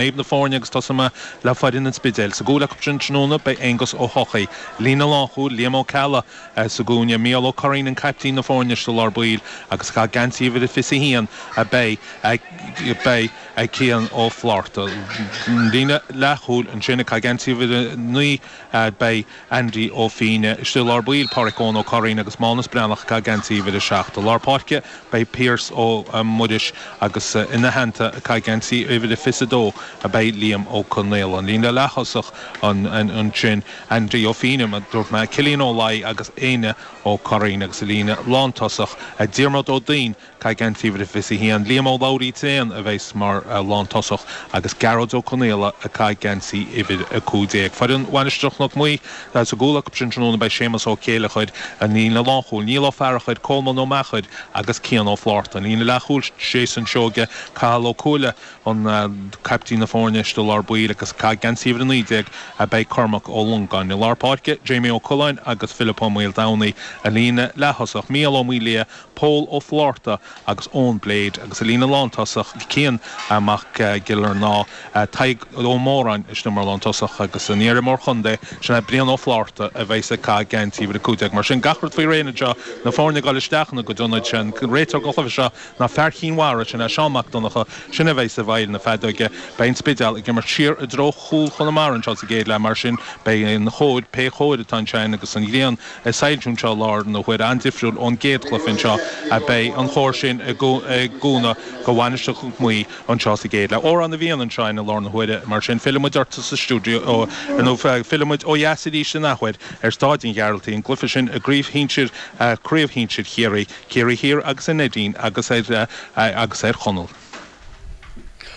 Naomh na foirne agus tosóidh mé le foireann an Spidéil. Sa gcúl acu sin tráthnóna beidh Aonghus Ó hEochaidh, líne lánchúil, Liam Ó Ceallaigh sa gcúinne, Mícheál Ó Curraoin an caiptín na foirne sa lár baill agus ag caitheamh geansaí uimhir a 21 a beidh beidh ag Cian Ó Flátharta. Líne leathchúil ansin ag caitheamh geansaí uimhir a 9 beidh. Aindí Ó Fíne, istigh i lár baill, Páraic Eoin Ó Curraoin agus Mánus Breathnach, ag caitheamh geansaí uimhir a seacht. I lár páirce beidh Pearse Ó Muiris agus ina theannta, ag caitheamh geansaí uimhir a fiche's a dó, beidh Liam Ó Conaola. An líne leath-thosach ansin, Aindí Ó Fíne, mar a dúirt mé, Cillian Ó Laoi agus Éinne Ó Curraoin agus sa líne lántosach, Diarmaid Ó Duinn, caitheamh geansaí uimhir a 21, Liam Ó Labhraí Tréan a bheas mar lántosach agus Gearóid Ó Conaola ag caitheamh geansaí uimhir a 15, Foireann Mhainistir Chnoc Muaidhe, sa gcúl acu sin tráthnóna beidh Séamus Ó Céilleachair, an líne lánchúil, Niall Ó Fearachair, Colmán Ó Meachair agus Cian Ó Flaithearta, an líne leathchúil, Jason Seoige, Cathal Ó Cuaille, an caiptín na foirne, istigh i lár baill agus ag caitheamh geansaí uimhir a 19 a beidh Cormac Ó Longáin. I lár páirce, Jamie Ó Culáin agus Philip Ó Maoldomhnaigh, an líne leath thosach, Mícheál Ó Maoildhia, Pól Ó Flátharta agus Eoin Blade, agus sa líne lántosach, Cian Mac Giollarnáth, Tadhg Ó Móráin, sin mar lántosach, agus an iar-imreoir contae, sin é Brian Ó Flátharta, a bheas ag caitheamh geansaí uimhir a 15. Mar sin, gach rud faoi réir anseo, na foirne ag dul isteach ina gcuid ionaid, sé an réiteoir don chluiche seo ná fear Chinn Mhara, sin é Seán Mac Donnacha, sin é a bheas i bhfeighil na feadóige. Beidh an Spidéal ag imirt siar i dtreo chúl Chonamara anseo sa gcéad leath, mar sin beidh an chóir, pé chóir atá ansin, agus an ghrian, ag soilsiú anseo i láthair na huaire an-difriúil ón gcéad chluiche anseo a bheidh an chóir sin ag cúnamh do Mhainistir Chnoc Muaidhe anseo sa gcéad leath. Órán a bhíonn anseo i láthair na huaire, mar sin fillfidh muid ortsa sa stiúideo nó fillfidh muid ó dheas arís in athuair ar Staid an Ghearaltaigh, an cluiche sin i gcraobh shinsir Chiarraí, Ciarraí Thiar agus an Neidín agus ar Chonall.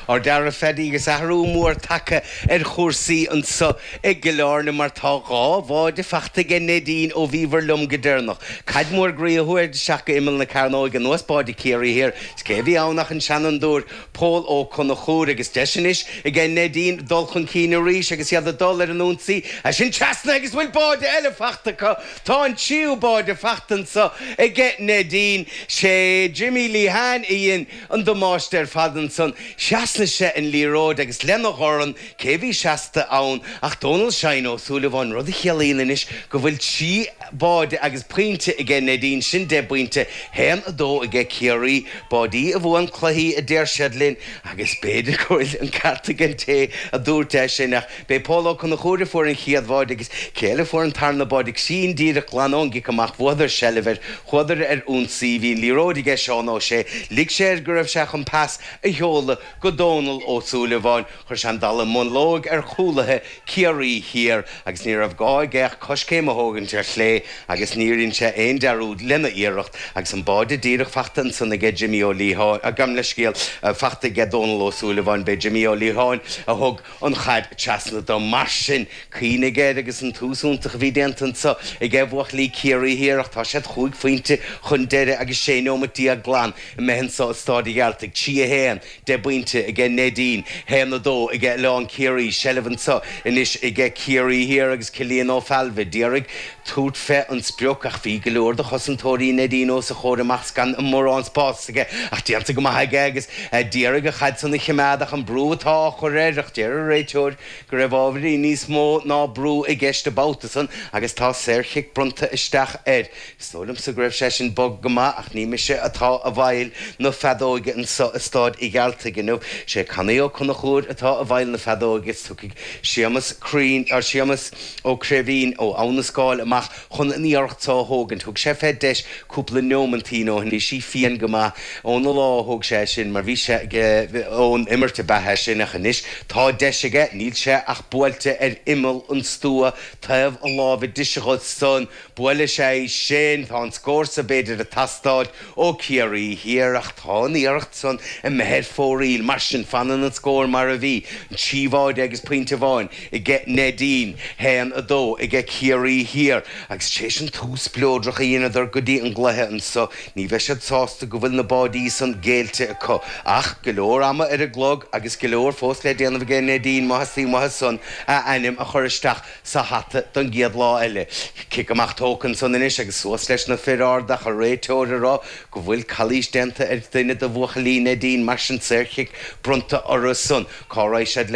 Ardfhear a Phaidí agus athrú mór tagtha ar chúrsaí anso i gCill Áirne mar tá dhá bháide fachta aige Neidín ó bhíobhair liom go deireanach. Caid mór groí a chuaigh isteach go imeall na cearnóige anuas báide Ciarraí thiar is cé a bhí ann ach an seanfhondúir, Pól Ó Conchúir agus deis anois aige Neidín dul chun cinn arís agus iad ag dul ar an ionsaí. A sin trasna agus bhfuil báide eile fachta acu tá an tríú báide fachta anso aige Neidín. Sé Jimmy Lehane a dhein. an damáiste ar fad ansan. Thrasnaigh sé an liathróid agus lena dhorn cé a bhí seasta ann ach Dónal Shine Ó Súilleabháin rud a chiallaíonn anois go bhfuil trí báide agus pointe aige Neidín, sin deich bpointe, haon, a dó aige Ciarraí, báidí a bhuann cluichí a deir siad linn agus b'fhéidir go bhfuil an ceart ag an té a dúirt é sin ach B'é Pól Ó Conchúir a fuair an chéad bháide agus cé eile a fuair an tarna báide ag sín díreach glan ón gcic amach bhuadar seilbh air, chuadar ar ionsaí, bhí an liathróid aige Seán Ó Sé, lig sé air go raibh sé chun pas a sheoladh go Dónal Ó Súilleabháin, chuir sé an dalladh mullóig ar chúlaithe Ciarraí Thiar agus ní raibh gá aige ach coiscéim a thógaint ar chlé agus níor dhein sé aon dearúd lena iarracht agus an báide díreach fachta ansan aige Jimí Ó Liatháin, gabh mo leithscéal, fachta aige Dónal Ó Súilleabháin, b'é Jimí Ó Liatháin a thug. an chaid treasna dó. Mar sin, cuimhnigh air agus an tús iontach a bhí déanta anso aige buachaillí Ciarraí Thiar ach tá siad chúig phointe chun deiridh agus sé neomat déag glan imithe anso i Staid a' Ghearaltaigh. Trí a haon, deich bpointe aige Neidín, haon a dó aige Oileán Ciarraí, seilbh anso anois aige Ciarraí Thiar agus Cillian Ó Failbhe d'iarraidh Tabhairt fé an sprioc, ach bhí go leor de chosantóirí Neidín os a chomhair amach 's gan mórán spás aige ach déanta go maith aige agus d'iarraidh an chaid san a chimeád ach an brú atá á chur air, ach deir an réiteoir go raibh ábhairín níos mó ná brú i gceist an babhta san agus tá saor-chic bronnta isteach air. Is dóigh liom-sa go raibh sé sin bog go maith ach ní mise atá i bhfeighil na feadóige anso i Staid a' Ghearaltaigh inniu. Sé Canaí Ó Conchúir atá i bhfeighil na feadóige is tiocfaidh Séamas Crean, Séamas, Ó Craoibhín ó Abha na Scáil amach chun an iarracht so a thógaint. Thug sé fé deis cúpla neóimintín ó shin. Bhí sí fiain go maith óna lámha a thóg sé é sin, mar bhí sé aige ón imirt an babhta sin, ach anois tá deis aige, níl sé ach buailte ar imeall an stua, taobh na láimhe deise dhe san. Buailfidh sé í sin, tá an scór so b'fhéidir ag teastáil ó Chiarraí Thiar, ach tá an iarracht san imithe ar fóraoil. Mar sin, fanann an scór mar a bhí, an trí bháide agus pointe amháin aige Neidín, haon, a dó aige Ciarraí Thiar, agus tar éis an tús spleodrach a dheineadar go dtí an gcluiche anso, ní bheidh siad sásta go bhfuil na báidí san géillte acu. Ach go leor ama ar an gclog agus go leor fós le déanamh aige Neidín má theastaíonn uathu san a n-ainm a chur isteach sa hata don gcéad lá eile. Cic amach tógtha ansan anois agus suas leis na fir arda ach an réiteoir ag rá go bhfuil calaois déanta ar dhuine de bhuachaillí Neidín mar sin saorchic bronnta orthu san. Cá raghaidh siad le.